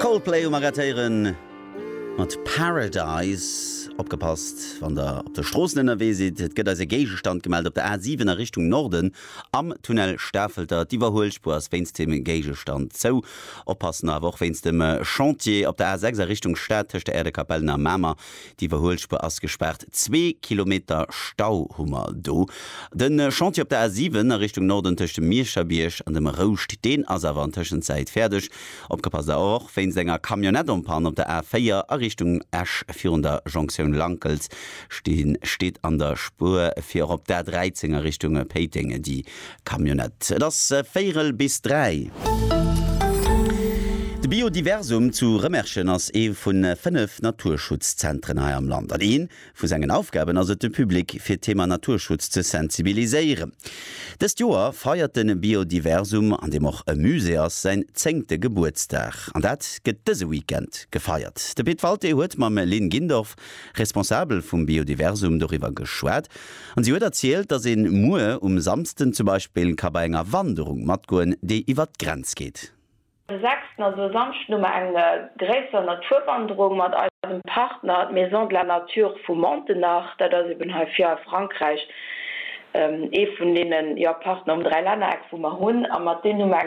Coldplay um Arrêtéiere mat Paradise. Opgepasst wann der op de Stroossen ënnerwee sidd, et gëtt eis e Géigestand gemellt op der A7 a Richtung Norden am Tunnel Stafelter. D'Iwwerhuelspuer ass wéinst deem Géigestand zou. Oppassen awer och wéinst dem Chantier op der A6 a Richtung Stad tëscht der Äerdekapellen a Mamer. D'Iwwerhuelspuer ass gespaart. Zwee Kilometer Stau hu mer do. De Chantier op der A 7 a Richtung Norden tëscht dem Mierscherbierg an dem Rouscht, deen ass awer an Tëschenzäit fäerdeg. Opgepasst awer och wéinst enger Camionnette en panne op der A 4 a Richtung Esch. Virun der Jonktioun Lankels stinn, steet an der Spuer fir op der A 13 a Richtung Péiteng déi. Camionnette. Et ass véirel bis dräi. De Biodiversum zu Rëmerschen ass ee vu fënnef Naturschutzzentren hei am Land an ee vu sengen Aufgaben ass et de Public fir d'Thema Naturschutz ze sensibiliséieren. Dëst Joer feiert de Biodiversum, an deem och e Musée ass, säin zéngte Gebuertsdag an dat gëtt dëse Weekend gefeiert. De Pit Walté huet mam Lynn Gindorff, Responsabel vum Biodiversum, doriwwer geschwat. An si huet erzielt, dass een muer um Samsden zum Beispill ka bei enger Wanderung matgoen, déi iwwert d'Grenz geet. De sechsten, also e Samschden, hu mer eng gréisser Naturwanderung mat eisem Partner d'Maison de la Nature vu Montenach. Dat ass eben hei vir a Frankräich ee vun deene Partner um Dräilännereck, wou mer hunn. A mat deenen hu mer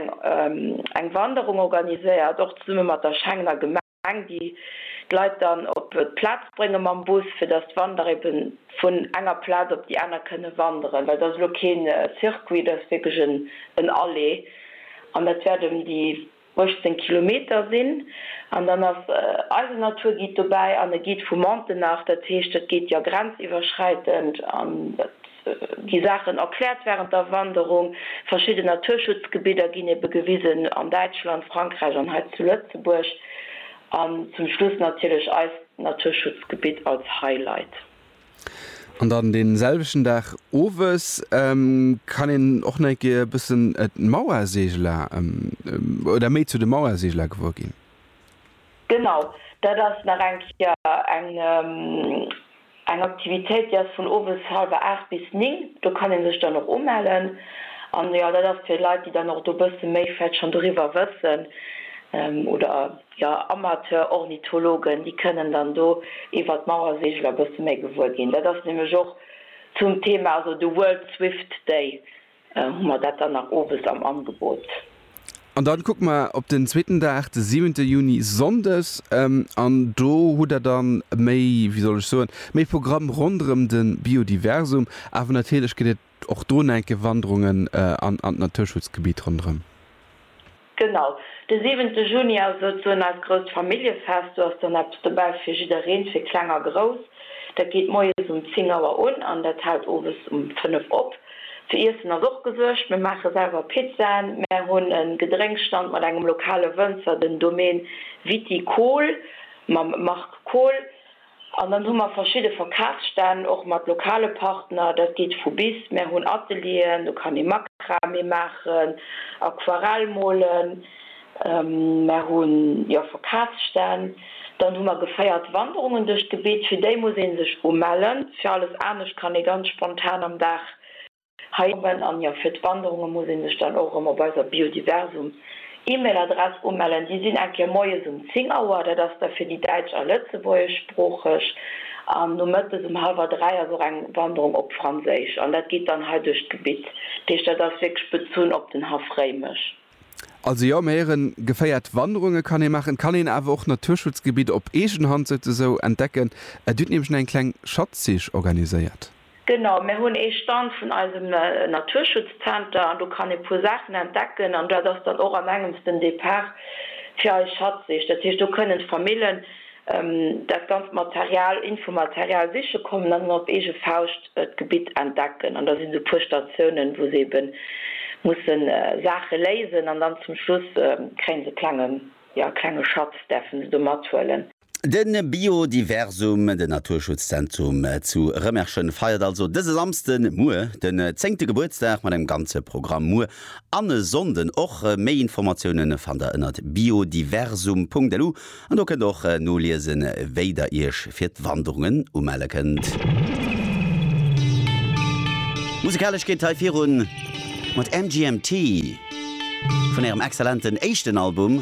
eng Wanderung organiséiert, och zesumme mat der Schengener Gemeng. Gemeng, déi d'Leit dann op d'Plaz brénge mam Bus, fir datt d'Wanderer ebe vun enger Plaz op déi aner kënne wanderen. Well et ass elo kee Circuit, et ass wierklech en Aller an dat wäert ëm déi 18 Kilometer sinn. An dann ass eisen Naturguide dobäi an e Guide vu Montenach, dat heescht, dat geet jo grenziwwerschräitend an dat. gi Saachen erkläert wärend der Wanderung, verschidden Naturschutzgebidder ginn ebe gewisen, an Däitschland, Frankräich an hei zu Lëtzebuerg, an zum Schluss natierlech eist Naturschutzgebitt als Highlight. An dann dee selwechten Dag owes kann een och nach eng Kéier e bëssen d'Mauerseegeler oder méi zu de Mauerseegeler gewuer ginn. Genau, dat ass nach eng Kéier eng Aktivitéit, déi ass vun owes hallwer aacht bis néng. Do kann ee sech dann och umellen. An jo, dat ass fir Leit, déi dann och do e bësse méi vläicht schonn doriwwer wëssen oder jo Amateur-Ornithologen, déi kënnen dann do iwwert d'Mauerseegel e bësse méi gewuer ginn. Dat ass nämlech och zum Thema, also de World Swift Day, Hu mer dat dann nach owes am Angebot. An dann kucke mer op den zweeten Dag, de siwente Juni, Sonndes. An do hutt Der dann méi, wéi soll ech soen, méi Programm ronderëm de Biodiversum. Awer natierlech gëtt et och do en enke Wanderungen an d'Naturschutzgebitt ronderëm. Genau, de siwente Juni ass souzesoen eist grousst Familljefest. Do ass dann eppes dobäi fir jiddereen, fir Kleng a Grouss. Dat geet moies um 10 Auer un an dat hält owes um 5 op. Fir Iessen ass och gesuergt, mir maache selwer Pizzaen, mär hunn e Gedrénkstand mat engem lokale Wënzer, den Domaine Viticole mam Marc Kohl. An dann hu mer verschidde Verkafsstänn och mat lokale Partner. Dat geet vu bis. Mär hunn Atelieren, do kann ee Makramee maachen, Aquarell molen. Mär hu jo Verkafsstänn. Dann hu mer geféiert Wanderungen duerch d'Gebitt. Fir déi muss ee sech umellen. Fir alles anescht kann ee ganz spontan am Dag Hei oben, an jo, fir d'Wanderunge muss ee sech dann och erëm op eiser Biodiversum E-Mail Adress umellen. Déi sinn eng Kéier moies um 10 Auer, dat ass da fir déi däitsch a lëtzebuergeschsproocheg, an nomëttes um hallwer 3 ass och eng Wanderung op Franséisch, an dat geet dann hei duerch d'Gebitt. Dat heescht, dat ass wierklech bezunn op den Haff Réimech. Also jo, mir héieren, geféiert Wanderunge kann ee maachen, et kann een awer och Naturschutzgebitt op eegen Hand souzesoen entdecken. Dir hutt nämlech nach eng kleng Schatzsich organiséiert. Genau, mir hunn ee Stand vun eisem Naturschutzzenter an do kann ee puer Saachen entdecken an dat ass dann och an engems den Depart fir eis Schatzsich. Dat heescht, do kënnen d'Famillen dat ganzt Material, Infomaterial siche kommen an dann op eege Fauscht d'Gebitt entdecken. An da sinn esou puer Statiounen, wou se eben musse Saache léisen an dann zum Schluss kréie se e klenge, jo e klenge Schatz däerfe se do mathuelen. De Biodiversum, den Naturschutzzentrum zu Rëmerschen, feiert also dëse Samsden, muer, den zéngte Gebuertsdag mat engem ganze Programm. Muer an e Sonnden och. Méi Informatioune fannt der ënnert biodiversum.lu an do kënnt och noliesen, wéi der iech fir d'Wanderungen umelle kënnt. Musikalesch geet et hei virun mat MGMT vun ärem exzellenten éischten Album.